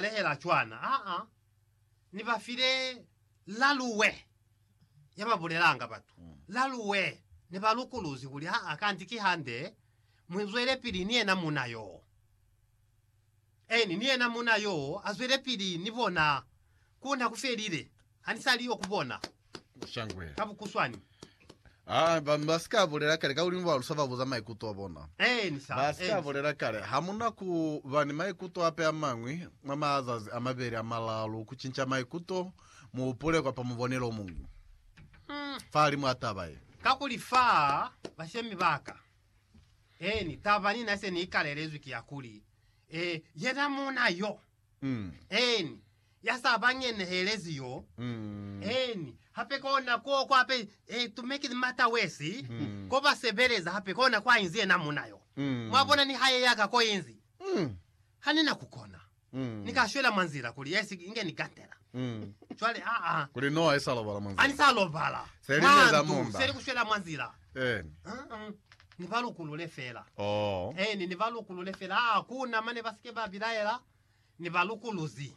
lehela cwana. Aa, Ni ba file laluwe ya ba bulelanga batu. Laluwe ne ba lukuluzi kuli, Aa, kanti ki hande, mu zwelepili ni yena muuna yoo. Eeni, ni yena muuna yoo a zwelepili ni bona ku na ku felile. Ha ni sa li yo ku bona. Shangwe. Ka bukuswani. Ah, ba, ba sika bulela kale ka ulimo ba lusa ba buza maikuto a bona. Eh, ni sa. Ba sika bulela kale. Ha mu na ku ba ni maikuto ape a mañwi, mwa mazazi a mabeli a malalu, ku cinca maikuto, mu hupule kwa pa mubonelo o muñwi. Hmm. Fahalimu a taba ye. Kakuli fa, bashemi ba ka. Eeni, taba ni na se ni ikalelezwi ki ya kuli, eh, yena muuna yo, Eeni, ya sa ba ngenehelezi yo. Eeni, hape kona ko kwa be tumekezi mata wesi, ko ba sebeleza hape kona kwa inzi yena muna yo. Mwa bona ni hae ya ka ko inzi, Ha ni na ku kona. Ni ka shwela mwa nzila kuli ya si inge ni gantela. Cwale, aa, Kuli no ha ni sa lobala mwa ha ni nzila. sa lobala mwa ndu, se ni ku shwela mwa nzila. Eeni. Uh-uh. Ni ba lukulule fela. Oh. Eeni, ni ba lukulule fela. Ah, kuna mane ba sike ba bilaela. Ni ba lukuluzi.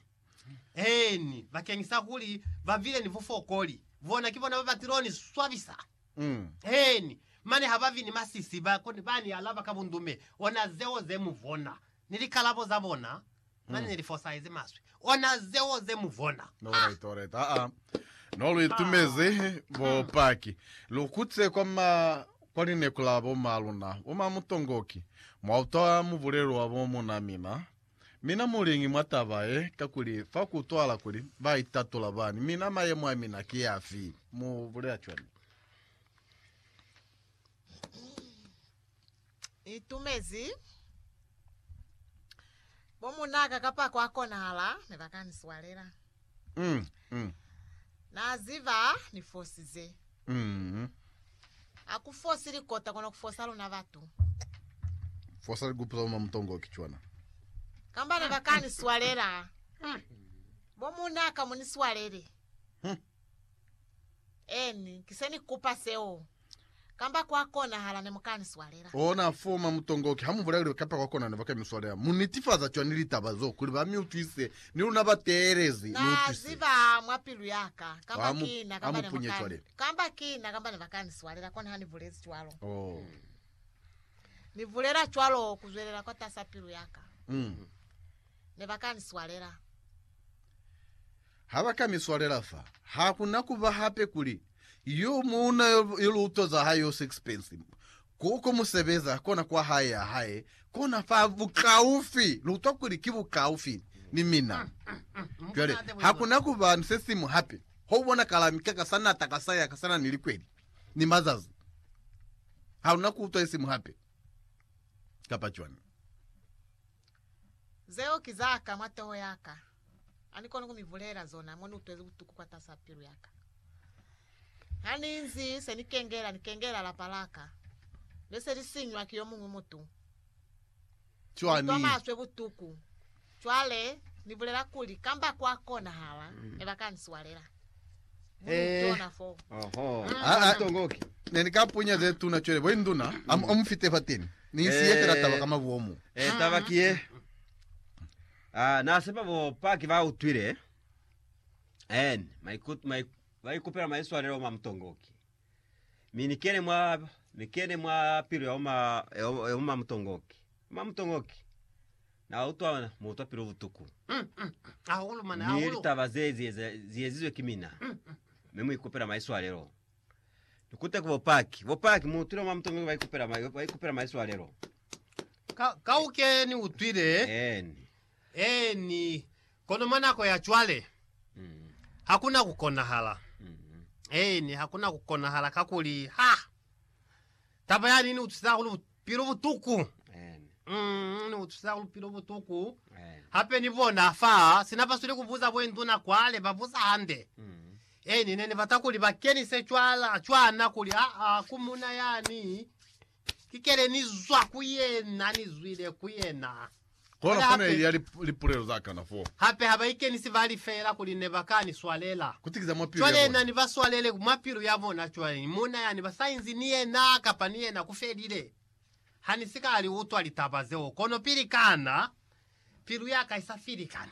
Eeni, bakeng sa kuli ba bile ni bufokoli. Bona ki bona ba ba tilo ni swabisa. Mm. Eeni, mane ha ba vi ni masisi, ba, ba ni alaba ka bundume. Ona zeo ze mu bona. Ni likalabo za bona. Mane ni li fosahezi maswi. Ona zeo ze mu bona. No Ha! right, alright. Aa. No lu itumezi bopaki. Lu kutile kwa ma kwa lineku la bo ma luna, bo ma Mutongoki. Mwa utwa mubulelo wa bo muna mina. Mina muliñi mwa taba ye? Kakuli fa ku utwahala kuli ba itatula bani. Mina mayemo a mina ki afi? Mu bulela cwani? itumezi bo munaka kapa kwa konahala ne ba ka ni swalela mm, mm. na ziva ni fosize mm. a ku fosi likota kona ku fosa luna batu fosa likupu za mamutongo kichwana kamba ne ba ka ni swalela hmm. bo munaka mu ni swalele hmm. eni kise ni kupa seo Kamba kwa konahala ne mu ka ni swalela. Ona foma mutongoki ha mu bulailu kamba kwa konahala ne ba ka mi swalela. Mu nitifaza cwani litaba zo kuli ba mi utwise? Ni luna ba teelezi, Na utwise. ziba mwa pilu ya ka, kamba Ha mu- ki na ha kamba mu ne mu punye ka cwale. ni, kamba ki na kamba ne ba ka ni swalela, kono ha ni bulezi cwalo. Oh. Ni bulela cwalo ku zwelela kwatas'a pilu ya ka. Mm. Ne ba ka ni swalela. Ha ba ka mi swalela fa, ha ku na ku ba hape kuli, Yo muuna yo, yo liuto za hae yo sixpence, ko, ko mu sebeza, kona kwa hae ya hae, kona fa bukaufi. Lu utwa kuli ki bukaufi ni mina. Cwale, ha ku na ku ba ni se siñwi hape. Ho bona kalami ka ka sa nata ka sa ya ka sa na ni likweli ni mazazi. Ha lu na ku utwa isiñwi hape. Kapa cwani. Zeo ki za ka mwa toho ya ka. Anikoni kumibulela zona moniutwezi butuku kwatasa pilu yaka. Haninzi senikengela nikengela lapa laka leselisinywa ki yomuñwi mutu. Cwani? Nitwa maswe butuku. Cwale nibulela kuli kamba kwakonahala mm. ebakaniswalela. Eh. ne ni ka punya ze tuna tšwele bo induna amu fite fa teni ni isiye eh. fela taba ka mabuomu eh, taba kiye Ah, na sepa bo Paki ba utwile and maikut mai ba ikupela maiswalelo ma mutongoki. Mi ni kene mwa ni kene mwa pilu ya uma ya uma- ya uma mutongoki. Uma mutongoki. Na utwa mu utwa pilu butuku. Mm, mm. Hahulu mane, Ni hahulu. litaba ze ze ze- ziyezizwe ki mina. Me mu ikupela maiswalelo. Ni kute ku bopaki. Bopaki, mu utwile mwa mutongo ba ikupela, ma- ba ikupela maiswalelo. Ka, kauke ni utwile. Eni. Eni. Kono mwa nako ya cwale, Mm, hakuna ku konahala. mm, Eni, hakuna ku konahala kakuli, ha! Taba yani ni utwisa hahulu bupilo butuku. Mm, ni utwisa hahulu bupilo butuku. Hape ni bona fa sina basweli kubuza bwenduna kwale babuza hande. E ni neni bata kuli ba kenise cwala cwana kuli aa ku muna yani kikele ni zwa ku yena ni zwile ku yena. Kono fo ne hape, ili ya li, lipulelo za kana fo. hape ha ba ikenisi ba li feela kuli ne ba ka ni swalela. Ku tikiza mwa pilu ya Cwale yena bona. ni ba swalele mwa pilu ya bona. Cwale ni muuna yani ba sa inzi ni yena, kapa ni yena ku felile. Ha ni si ka li utwa litaba zeo, kono pili kana pilu ya ka i sa filikani.